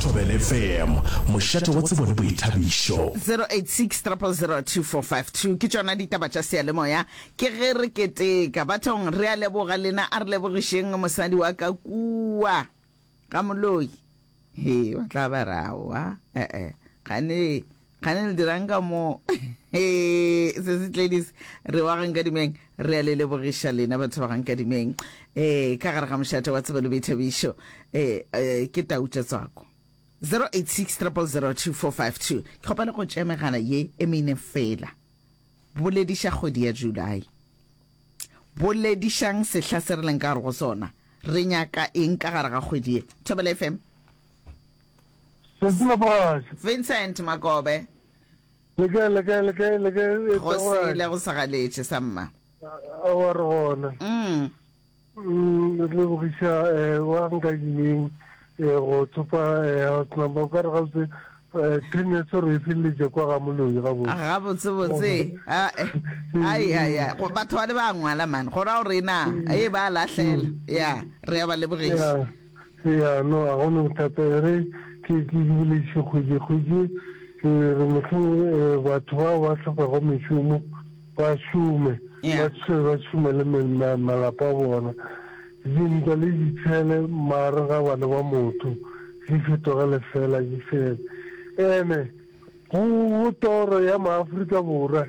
Thobele FM, mošate wa tsebo le boithabišo. 0860002452 ke tšona ditaba tša seyalemoya ke ge re keteka bathong re a leboga lena a re lebogišeng mosadi wa ka kua ga moloi he ba tla ba rawa ee gane kgane le dirang ka moo se se tledis re wa gang kadimeng re a le lebogiša lena batho ba gang kadimeng um ka gare ga mošate wa tsebelo boithabišo um ke tautša tswako 086 002452 ke kgopa le go tšea megala ye e mene fela bolediša kgwedi ya july boledišang sehla se re leng ka gare go sona re nyaka eng ka gare ga kgwedi ye thobela fm Sentile mogatša. Vincent Makobe. Le kae, le kae, le kae, le kae, e Go tla sele gwae? go sa galetše sa mma. A wa re gona. Mm. Mm, re lebogiša eh, wa nka yeng eh, go thopa eh, house number o ka re gabotse eh, pin ya tshwaro e feleletša kwa ga moloi gabotse Ga botse botse. A eh. Ai ya ya. Go batho ba le ba ngwala man. Go ra gore na e ba lahlela. Ya, re ya ba lebogiša. Yeah. Eya, no, ga go na bothata. E re ke bolediše kgwedi-kgwedi, ke re mohlomong batho bao ba hlophago mešomo ba šome, ba tšhele ba šome le malapa a bona. Dintwa le ditshele magareng ga bana ba motho di fetoge lefela di fele. Ene go toro ya maAfrika Borwa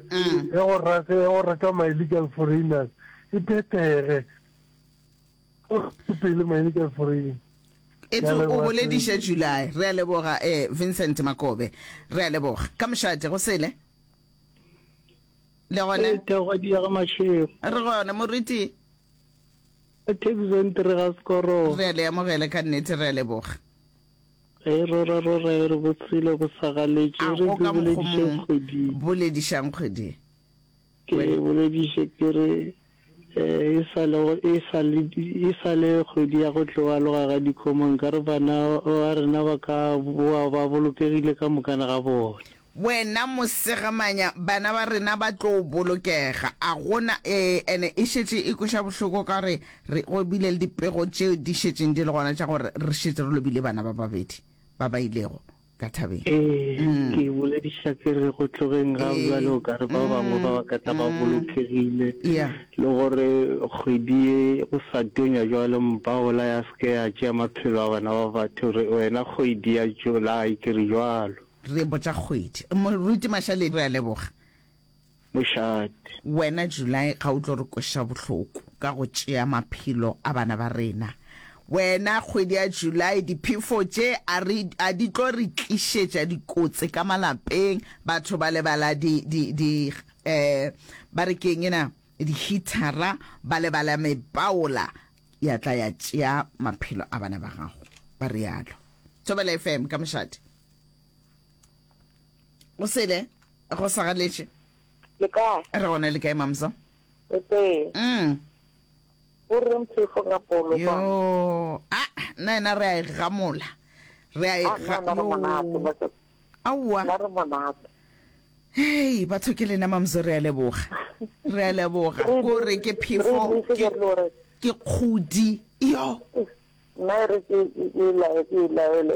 ya go reka ma-illegal foreigners e phethege. pele maine ka foreng etse o bolediša july re a leboga eh vincent makobe re a leboga ka mošate go sele le gone eh, thego di ya ga mashego re gone moriti eh, thebiso e ntere ga sekoro re a le amogele ka nnete re a leboga ge eh, rora rora e re botshelo bo sagaletše re boledišeng kgwedi boledišang kgwedi ke bolediše ke re E sa le kgwedi ya go tlo aloga ga dikgomo, nkare bana ba rena ba ka boa ba bolokegile ka mokana ga bona. Wena mosegamanya, bana ba rena ba tlo bolokega. A go na? Ee, ene e šetše e kweša bohloko ka gore re robile le dipego tše di šetšeng di le gona tša gore re šetše re lobile bana ba babedi ba ba ilego ka thabeng. Ee, ke e bolediša ke re go tlogeng ga bjale o ka re ba bangwe ba ba ka tla ba bolokegile Yeah. le gore kgwedi ye go sa tonya jwale mpaola ya se ke ya tšea maphelo a bana ba batho re wena kgwedi ya July ke re jwalo. Re botša kgwedi. Moruti Mashale re a leboga. mošate. Wena July ga o tlo re kweša bohloko ka go tšea maphelo a bana ba rena. Wena kgwedi ya July diphefo tše a re a di tlo re tlišetša dikotsi ka malapeng batho ba lebala di di di eh ba re keng ena di heater-a ba lebala mepaola ya tla ya tšea maphelo a bana ba gago ba realo. Thobela FM ka mošate. o sele go sagaletše le kae re gona le kae mamsa o tee mm. o reng phefo ga polo yo a nna ena re a e gamola re a e ah, ga aowa hei batho ke lena mamso re a leboga re a leboga ko re ke phefo ke kgodi yo nna e re ke e laele